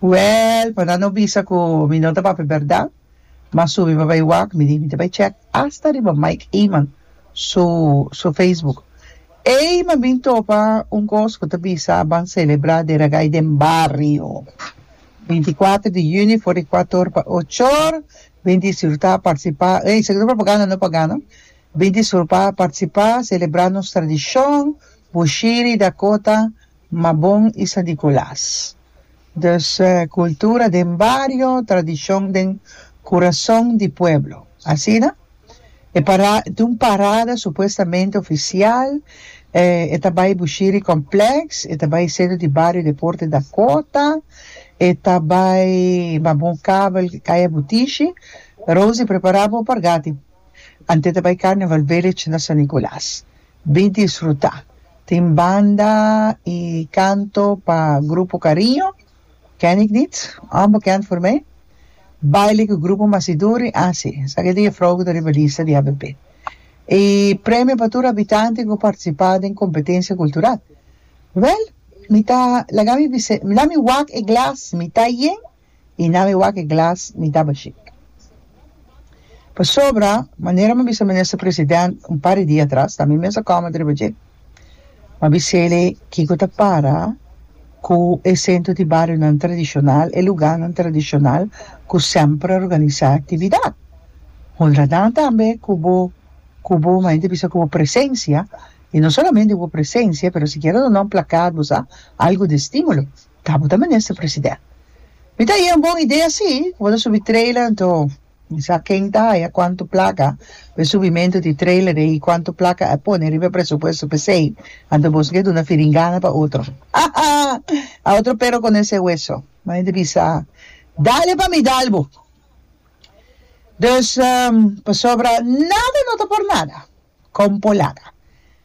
Wèl, por nan no bisa ku mi no ta papia bèrdat, ma subi pa bai wak, mi di mi ta bai chèk asta riba Mike Eman su su facebook. Ei, mi a bin topa un kos ku ta bisa ban selebrá Dia di Ragay den bario. Binti i kuater di yüni for di kuator pa ochor bin disfrutá, partisipá, ei, esaki ta propaganda no pagá no, bin disfrupá, partisipá, selebrá nos tradishon, bushiri, dakota, ma bon i sa di kulas. Dus kultura den bario, tradishon den kurason di pueblo. Asina? E para ta un parada supuestamente ofisial, e ta bai Bushiri Complex, e ta bai Centro di Bario Deporte Dakota, e ta bai Mabon Kabel Kaya Butishi. Rosie, prepara bo par gati. Ante ta bai Carnival Village na San Nicolas. Di disfrutá. Tin banda i kanto pa Grupo Kariño, Ken ik niet, Onbekend voor mij, baile ku Grupo Masiduri, Asi, sa keda e frou ku ta riba lista di ABP. E premio pa tur habitante ku a partisipá den kompetensia kultural. Wèl, mi ta laga mi bisé, mi la mi wak e glas, mi ta yen. y na mi wak e glas mi daba shik. Pasobra manera m'a bisa Minister President un par di dia atras ta mi mes a comment riba dje. M'a bis'ele kico ta para cu e centro di barionan tradicional, e lugarnan tradicional cu semper a organisa actividad. Honra nan tambe cu bo cu bo m'a hende bisa cu bo presencia y no solamente bo presencia pero sikiera duna un placard bo sa algo di estimulo. Ta bo ta minister president. Mi ta haya un bon idea si cu bo ta subi trailer anto mi sa ken ta haya cuanto placa pa e subimento di trailer de ahi cuanto placa a pone riba e presupuesto pesey anto boso ke duna firingana pa otro hahaha otro pero con ese hueso ma e ta bisa dale pa mi dal bo dus pasobra nada no ta por nada Compo laga.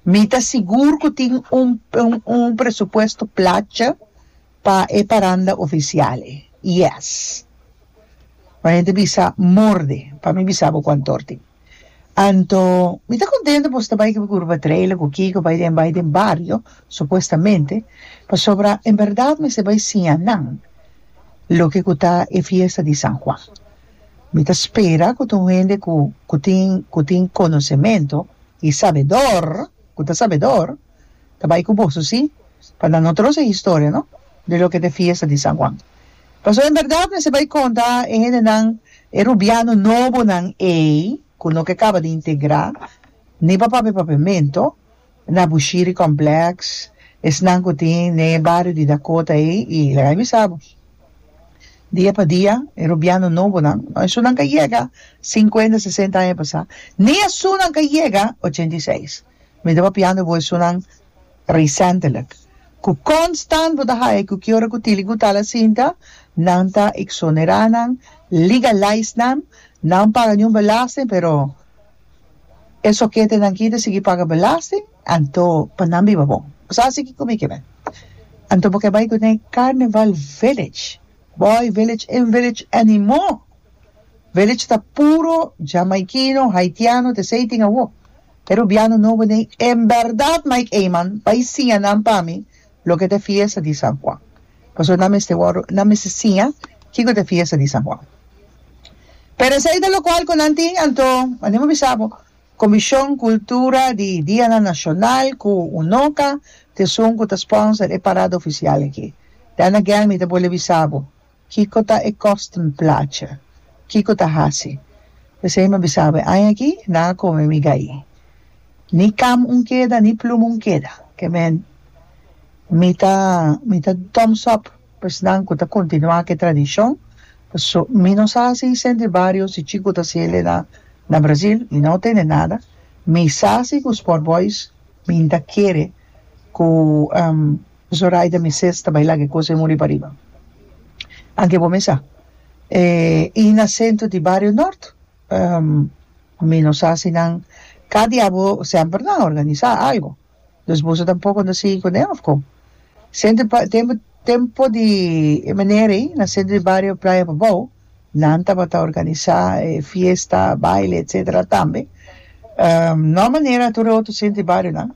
Mi ta sigur cu tin un un presupuesto placa pa e paranda oficial e. Yes. Cu hende bisa morde pa mi bisa bo cu antor tin. Anto mi ta contento bo ta bay cu Curva Trailer cu kico bay den bay den bario supuestamente pasobra en verdad mester bay siña nan loke cu ta e fiesta di San Juan. Mi ta spera ku ta un hende ku ku tin ku tin konosementu i sabedor ku ta sabedor ta bai ku boso si pa na notros e historia no di loke ta e fiesta di San Juan pasobra en berdad mester bai konta e hendenan e rubiano nobonan ei ku no ke kaba di integrá ni pa pape papementu Na Bushiri Complex, esnan cu tin den e bario di Dakota ey, y laga mi bisa bo, dia pa dia e rubiano nobonan, no esunnan ka yega cincuenta, sesenta aña pasa, ni esunnan ka yega ochenta y seis. Mi ta papiando bo esunnan recentelijk, cu constant bo ta haya cu kiora cu tili cu tal asinta, nan ta exonera nan, legalize nan, nan paga niun belasting, pero. E soketenan ki ta sigui paga belasting, anto pa nan biba bon. Bo sa si kiko mi ke bai. Anto bo ke bai ku den Carnival Village. Boy Village en Village animó. Village ta puro jamaikino, haitiano te esei tin awo. E rubiano nobo den. En bèrdat Mike Eman bai siña nan pa mi Loke ta e fiesta di San Juan? Pasobra nan mester wòrdu nan mester siña kiko ta e fiesta di San Juan. Pero esei ta lokual ku nan tin, anto wanier bo bisa bo Komishon Kultura di Dianan Nashonal ku UNOKA t'esun ku ta spònser e parada ofisial aki? Dana Guelmi ta por lei bisa bo Kiko ta e kosten placha? Kiko ta hasi? P'esei mi a bisa, Awe aña aki nan a kome mi gayi. Ni kam un keda, ni plum un keda. Kemen mi ta mi ta thumbs up esnan ku ta kontinuá ku e tradishon. Paso mi no sa si Vicente di Barrio, si Chico ta hasi el na na Brazil, mi no tende nada. Mi sa si ku Sport Boys mi ta kere ku. Zoraida mi ses ta baila ke cosa e muri pariba anke bo mesa e i na centro di bario nort ehm mi no sa si nan ka di abo semper nan a organisa algo dus boso tampoco no sigui cu den of con centro di ba tempo tempo di e meneer ei na centro di bario playa Bobou nan tabata organisa e fiesta baile etcetera tambe ehm no a manera tur e otro centro di bario nan.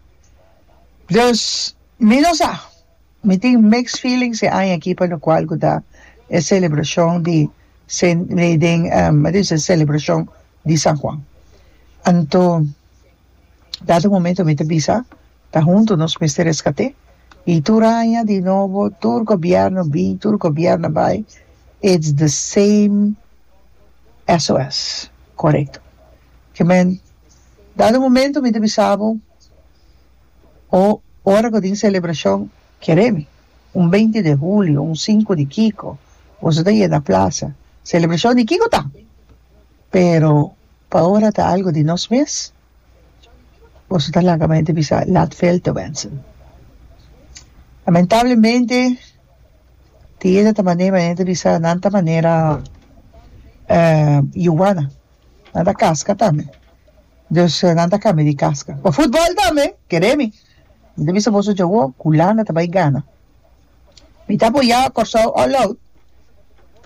Dus, mi no sa. Mi tin mixed feelings e aña aki pa locual cu ta e celebracion di den me ta bisti celebracion di San Juan. Anto, dat un momento mi ta bisa, ta hunto nos mester rescate y tur aña di nobo, tur gobierno bin, tur gobierno bay, it's the same SOS. Corecto. Kimen, dat un momento mi ta bisa bo. o ora ku tin selebrashon keremi un beinti de hulio un sinku di kiko boso ta yega plasa selebrashon di kiko ta pero pa ora ta algu di nos mes boso ta laga mente bisa laat veel te wensen lamentablemente tin yende ta manera nan ta manera yuana. Nan ta kaska tambe. Dus nan ta kambia di kaska pa futbòl tambe. Kere mi. Mi ta bisa boso djawo ku Hulanda ta bai gana. Mi ta apoyá Kòrsou all out.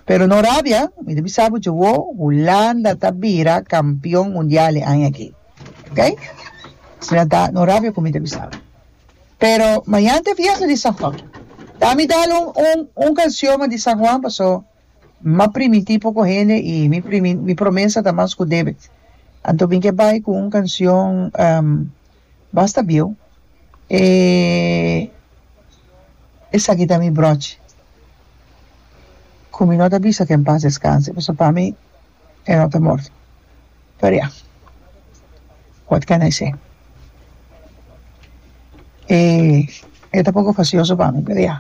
Pero no rabia, mi ta bisa bo djawo Hulanda ta bira kampion mundial e aña aki. Ok? Asina ta, no rabia ku mi ta bisa bo. Pero mañan ta e fiesta di San Juan. Dami dal un un un kansioman di San Juan paso. ma primití poko hende i mi primi mi promesa ta mas ku David. Anto mi ke bai ku un kansion basta bieu, e esaki ta mi bròchi ku mi no ta bisa ku en pas deskanse pasobra pa mi e no ta morto. Pero ya, what can I say? E e ta poko fasioso pa mi pero ya.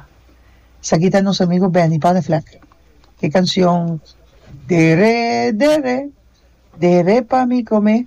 Esaki ta nos amigo Benny Panevlek e cancion Dere dere dere pa mi come.